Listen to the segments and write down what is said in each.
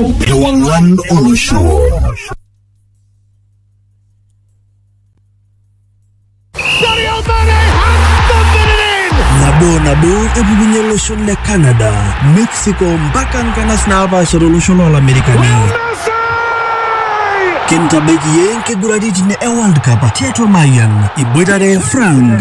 Ewang'an olosho. nabo nabo epukunye olosho le canada mexico mpaka nkanas naapaasha tolosho loolamerikani kintabaiki ye nkiguraritin e world cup tiatua mayian iboitare frank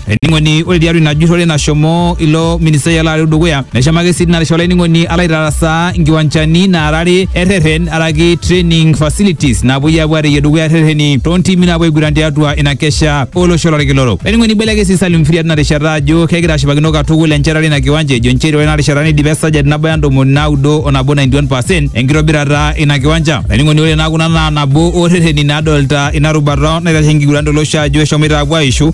Ening'oni ore tiatua ina jurrore nashomo ilo ministai ele ari dukuya neshamaki sii tinarishata olainining'oni alo aitarasaa nkiwanchani naara are erreren araki training facilities napuoi apuo areyie dukuya rrereni toontimi napuo aiguran tiatua ina kesha olosho lorkila orok. Olainining'oni eibelekeny sii Salim Mfiria tina rishata ajo kegira ashipakino katukul enchetare ina kiwanja ejo nchere ore ina rishata neidipa esajati nabo o ntomoni naudo o nabo, 91 percent, enkitobirata ina kiwanja. Olainining'oni ore naa kuna naa nabo oo rrereni naadolita ina rubata naitasheki enkiguran tolosho ajo eshomoita apuo aishu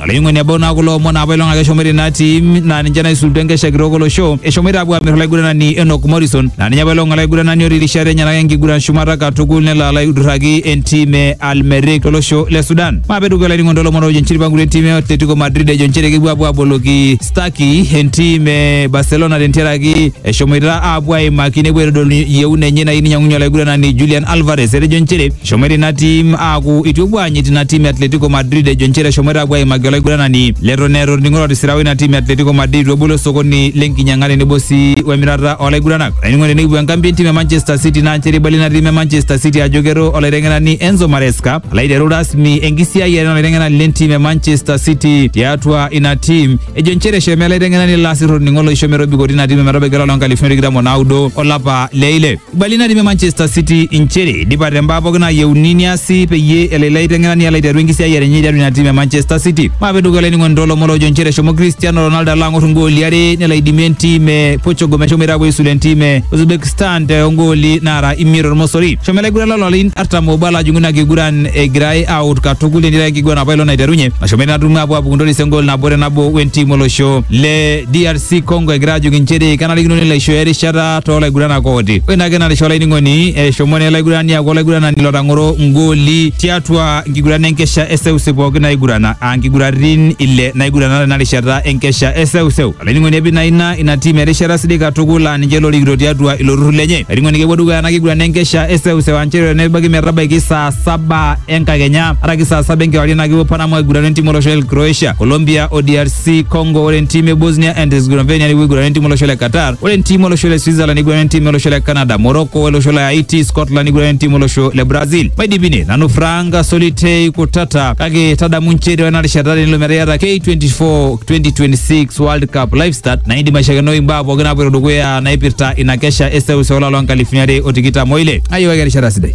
Olaing'oni ebau naa kulo omon apa ilong ake eshomoita ina tim naa ninche naisulutua enkesha kitok olosho eshomoita apuo aamir olaiguranani Enoch Morrison naa ninye apa ilong olaiguranani otii rishat enyenak enkiguran shumata katukul nelo alo aidurraki entim e Al Merrikh tolosho le Sudan. Maape dukuya olainining'oni toolomon oojo nchere eipangutua entim e Atletico Madrid ejo nchere kepuo apuo aboloki Stuckey entim e Barcelona tentiaraki eshomoita apuo aimaki nepuo aitodolu yieuna enye nayieu ninyang'unye olaiguranani Julian Alvarez etejo nchere Eshomoita ina tim aaku itu epuo aanyit ina tim e Atletico Madrid ejo nchere eshomoita apuo aimaki olaiguranani leton eeta orning'o lotisira oina tim e Atletico Madrid itu ebolo osokoni lenkinyang'a tenebo sii wemirata olaiguranani. Olainining'oni tenikipuo enkambi entim e Manchester City naa nchere eibalie ina tim e Manchester City ajo kero olaiteng'enani Enzo Maresca alo aiteru rasmi enkisiayiare olaiteng'enani lentim e Manchester City tiatua ina tim ejo nchere eshomo ele aiteng'enani lasir orning'o loisho metobiko tina tim ometabaiki olapa loonkalifuni tikitam onaudo olapa le ile. Ibali natii Manchester City inchere idipate mbaa pookin naayieuni niasi peyie elo ilo aiteng'enani alo aiteru enkisiayiare enye tiatua ina tim e Manchester City. Maape dukuya olainining'oni toolomon loojo inchere eshomo Cristiano Ronaldo alo ang'or ingooli are nelo aidimie entim e Portugal meshomoita aapuo aisula entim e Uzbekistan te ongooli naara imiet tormosori. Eshomo ilaiguran loo larin artam oobo alo ajing'u ina kiguran egirai aawut katukul netii ake enkiguran apa ilo naiterunye nashomo ina tumo aapuo aapuku ntoris engool nabo te nabo wentim olosho le DRC Congo egira aajoki inchere kenarikino nelo aishooyo erishata too laiguranak ooti. Ore ina kenarishwa olainining'oni eshomo naa ele aigurani aaku olaiguranani lotang'oro ngooli tiatua nkiguran enkesha eseuseu pooki naigurana aa nkiguratin ile naigurana tena rishata enkesha eseuseu. Olainining'oni epik naa ina ina tim erishata sidai katukul aa ninche lorikito tiatua ilo turrur lenye. Olainining'oni kepuo dukuya ena kiguran enkesha eseuseu aa nchere nebaiki metabaiki saa saba enkakenya araki saa saba enkewarie naa kepuo Panama aigurana entim olosho le Croatia, Colombia o DRC Congo. Ore entim e Bosnia and Herzegovina nepuo aigurana entim olosho le Qatar. Ore entiim olosho le Switzerland neiguran entiim olosho le Canada, Morocco olosho le Haiti, Scotland neiguran entiim olosho le Brazil. Maidipine nanu Frank Solitei Kutata kake tadamu nchere ore ena rishata tenilo metaa iyata K24 2026 World Cup live start naa indim aishakenoi imbaa pooki naapoito dukuya naipirta ina kesha e seuseu olapa loo nkalifuni are o tikitam oile. Ayiwaki erishata sidai.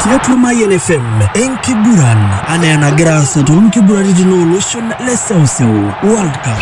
tiatua Mayian FM enkiguran anaa enagira aasa toonkiguraritin ooloshon le seuseu World Cup.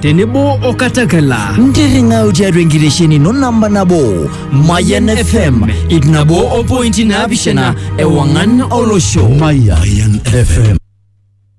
tenebo o katakala ntirring'au tiatua enkitesheni ino namba nabo mayan fm ip nabo o pointi naapishana ewang'an olosho Mayan FM.